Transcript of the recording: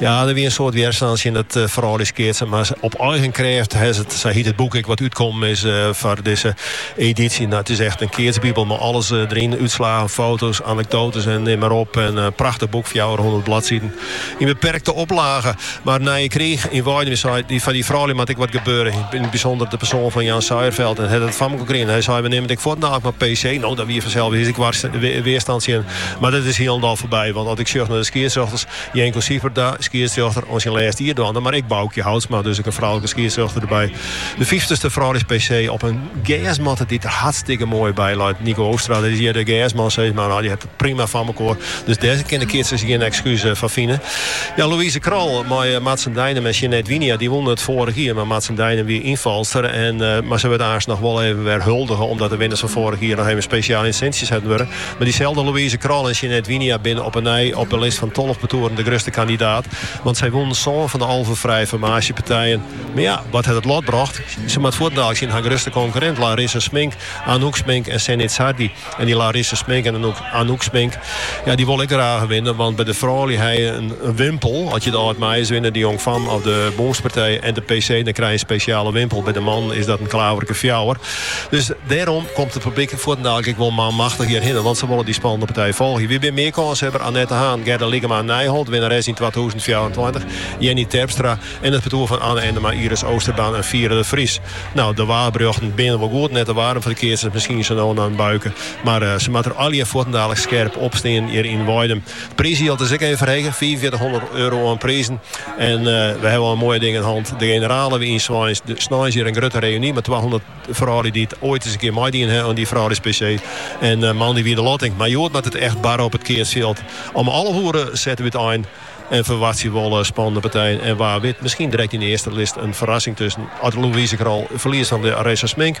Ja, der wie in soad wjerstân tsjin it eh, frouljuskeatsen, mar Op eigen krêft hè, sa hiet it boek ek wat útkommen is eh, foar dizze edysje. No, it is echt in keatsbibel mei alles eh, deryn, útslaggen, foto's, anekdotes en neam mar op. In eh, prachtich boek, fjouwerhûndert bladsiden, yn beperkte oplage. Mar Nije Kriich yn Weidum, dy sei, dy, foar dy froulju moat ek wat gebeure. Yn it bysûnder de persoan fan Jan Suierveld, en hat it foar mekoar krigen. Hy sei, we neame it ek fuortendaliks mar PC. No, der wie fansels ek wjerstân tsjin. Mar dat is hielendal foarby. Want as ik sjoch nei de skiedsrjochters, Jenco Sieperda, skiedsrjochter, oan syn lêste jier dwaande, mar ek Boukje Houtsma, dus ek in froulike skiedsrjochter derby. De fyftichste frouljus-PC op in gersmatte dy't der hartstikke moai by leit. Nico Oostra, dat is hjir de gersman, sis mar, nou, dy hat it prima foar mekoar. Dus dêr kin de keatsers gjin ekskuus foar fine. Ja, Louise Krol mei Martzen Deinum en Sjanet Wijnia, dy wûnen it foarich jier, mar Martzen Deinum wie ynfalster. Mar sy wurdt aanst noch wol even wer huldige, omdat de winners fan foarich jier noch even spesjaal yn 't sintsje setten wurde. Mar dyselde Louise Krol en Sjanet Wijnia binne op 'e nij op 'e list fan tolve partoeren de grutste kandidaat. Want sy wûnen sân fan 'e alve frije formaasjepartijen. Mar ja, wat hat it lot brocht? Se moatte fuortendaliks tsjin har grutste konkurrint Larissa Smink, Anouk Smink en Senne Idsardi. En dy Larissa Smink en Anouk Smink, ja, dy wolle ek graach winne. Want by de froulju ha je in wimpel. As je de Ald Meiers winne, de Jong Famme of de bûnspartij en de PC, dan krij je in spesjale wimpel. By de mannen is dat in klaverke fjouwer. Dus dêrom komt de publyk fuortendaliks ek wol manmachtich hjirhinne, want se wolle dy spannende partij folgje. Wie binne mear kânshebber? Annet de Haan, Gerde Lycklama à Nijeholt, winnares yn twatûzen fjouwerentweintich, Jennie Terpstra en it partoer fan Anna Ennema, Iris Oosterbaan en Fiera de Vries. Nou, de waarberjochten binne wol goed, net te waarm foar de keatsers, miskien sa no en dan in buike, mar se moatte der allegear fuortendaliks skerp op stean hjir yn Weidum. It priisjild is ek even ferhege, fiifenfjirtichhûndert euro oan prizen. En we hawwe al moaie dingen hân. De generale wie yn Sweins, snein hjir in grutte reüny mei twahûndert froulju dy't oait ris in kear meidien ha oan dy frouljus-PC. En moandei wie de lotting. Mar hjoed moat it echt barre op it keatsfjild. Om alve oere sette we út ein en ferwachtsje we wol spannende partijen. En wa wit, miskien drekt yn de earste list in ferrassing tusken as Louise Krol ferliest fan Larissa Smink.